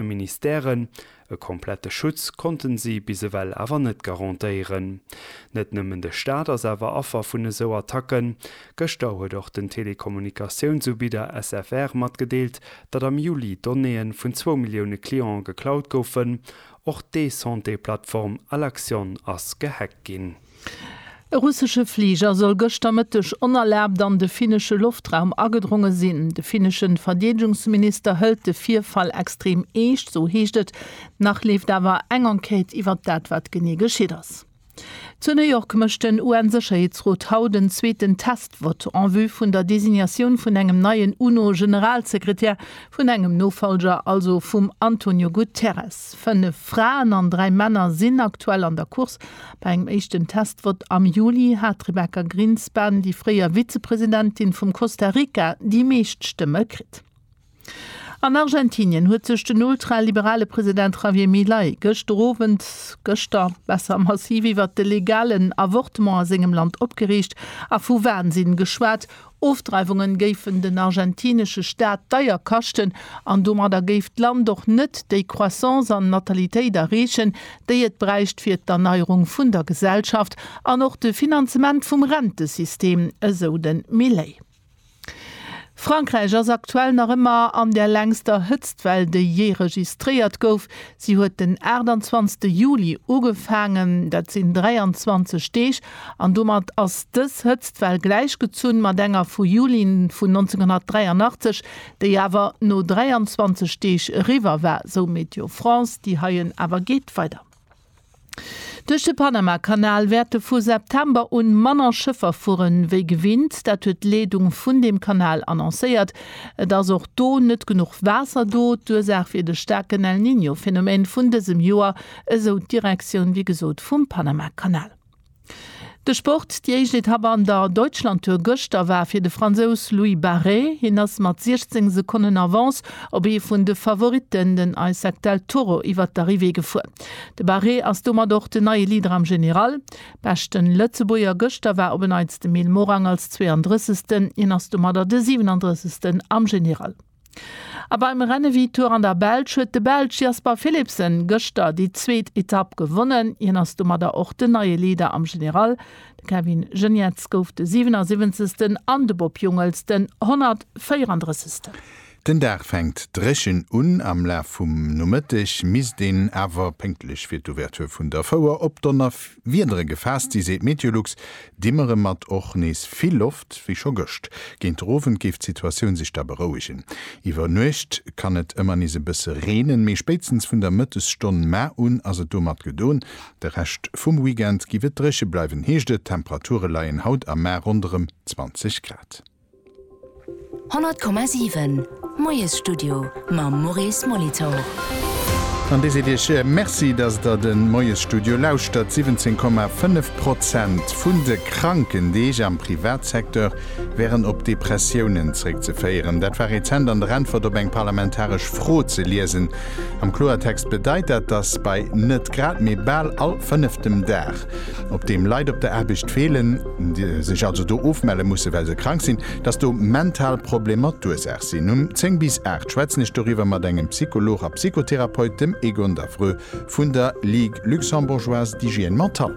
verschiddene Ministèren. E komplette Schutz konnten si bis ewell awer net garantéieren. Net nëmmen de Staat ass awer Affer vun esou Attacken. Gëschter huet och den Telekommunikatiounsubidder SFR matgedeelt, datt am Juli Donnéeë vun zwou Millioune Clientë geklaut goufen. Och d'E-Santé-Plattform Alaxion ass gehackt ginn. E russesche Fliger soll gëschter Mëtteg onerlaabt an de finnesche Loftraum agedronge sinn. De finnesche Verdeedegungsminister hëlt de Virfall extrem eescht, esou heescht et. Nach leeft awer eng Enquête iwwer dat, wat genee geschitt ass. Zu New York mécht den UN-Sécherheetsrot haut en zweeten Test-Vott en vue vun der Designatioun vun engem neien UNO-Generalsekretär, vun engem Nofollger also vum Antonio Guterres. Fënnef Fraen an dräi Männer sinn aktuell an der Course. Bei engem éischten Testvott am Juli hat d'Rebecca Grinspan, déi fréier Vizepresidentin vum Costa Rica, déi meescht Stëmme kritt. An Argentinien huet sech den ultraliberale President Javier Milei gëschter Owend, gëschter besser, massiv iwwert de legalen Avortement a sengem Land opgereegt a vu Wahnsinn geschwat, Ofdreiwungen géifen den argentinesche Staat deier kaschten an domadder géif d'Land och net déi Croissance an Natalitéit erreechen, déi et bräicht fir d'Erneierung vun der Gesellschaft an och de Finanzement vum Rentesystem, esou de Milei. Frankräich ass aktuell nach ëmmer an der längster Hëtztwell, déi jee registréiert gouf. Si huet den 28 Juli ugefaangen, dat sinn 23 Deeg An domat ass dës Hëtztwell gläichgezunn mat enger vu Juli vun 1983, déi awer no 23 Deeg eriwwer war, sou Météo France. Déi heien awer geet weider. Duerch de Panamakanal wäerte vu September un manner Schëffer fueren, wéi gewinnt. Dat huet d'Leedung vun deem Kanal annoncéiert. Et ass och do net genuch Waasser do. D'Ursaach wier de staarken El Niño-Phenomen vun dësem Joer, esou d'Direktioun, wéi gesot, vum Panamakanal. De Sport, Déi éischt Etapp an der Deutschlandtour gëschter war fir de Fransous Louis Barret. Hien ass mat 16 Sekonnen Avance op ee vun de Favoritten, den Isaac Del Toro, iwwert d'Arrivée gefuer. De Barret ass domat och den neie Leader am General. Beschte Lëtzebuerger gëschter war op en Neits de Mil Morang als 32. Hien ass domadder de 37. am General. A beim Rennevitour an der Belsch huet de Belsch Jasper Philipsen gëschter déi zweet Etapp gewonnen. Hien ass domadder och den neie Leader am General. De Kevin Geniets gouf de 77. an de Bob Jungels den 134. Den Dag fänkt dréchen un. Am Laf vum Nomëtteg misst een awer, pénktlech fir d'Ouverture vun der Fouer, op Donnerwiedere gefaasst si, seet Meteolux. Dimmere mat och nees vill Loft wéi scho gëscht. Géint de Owend géif d'Situatioun sech da berouegen. Iwwer Nuecht kann et ëmmer nees e bësse reenen, mee spéitstens vun der Mëttesstonn ma un ass et domat gedoen. De Rescht vum Weekend giff et dréche bleiwen, heescht et. D'Temperature leien haut a ma ronderëm 20 Grad. 100,7 Moiesstudio mam Maurice Molitor. An Dir seet Iech Merci, dass Der de Moiesstudio lauschtert. 17,5 Prozent vun de Krankendeeg am Privatsecteur wären op Depressiounen zréckzeféieren. Dat war rezent an der Äntwert op eng parlamentaresch Fro ze liesen. Am Kloertext bedeit dat, dass bei net grad, mee bal all fënneftem Dag op deem Leit op der Aarbecht feelen, déi sech also do ofmelle mussen, well se krank sinn, dass do mental Problemer d'Ursaach sinn. Um 10 bis 8 schwätzen ech doriwwer mat engem Psycholog a Psychotherapeut, dem Egon Daffreux vun der Ligue luxembourgeoise d'hygiène mentale.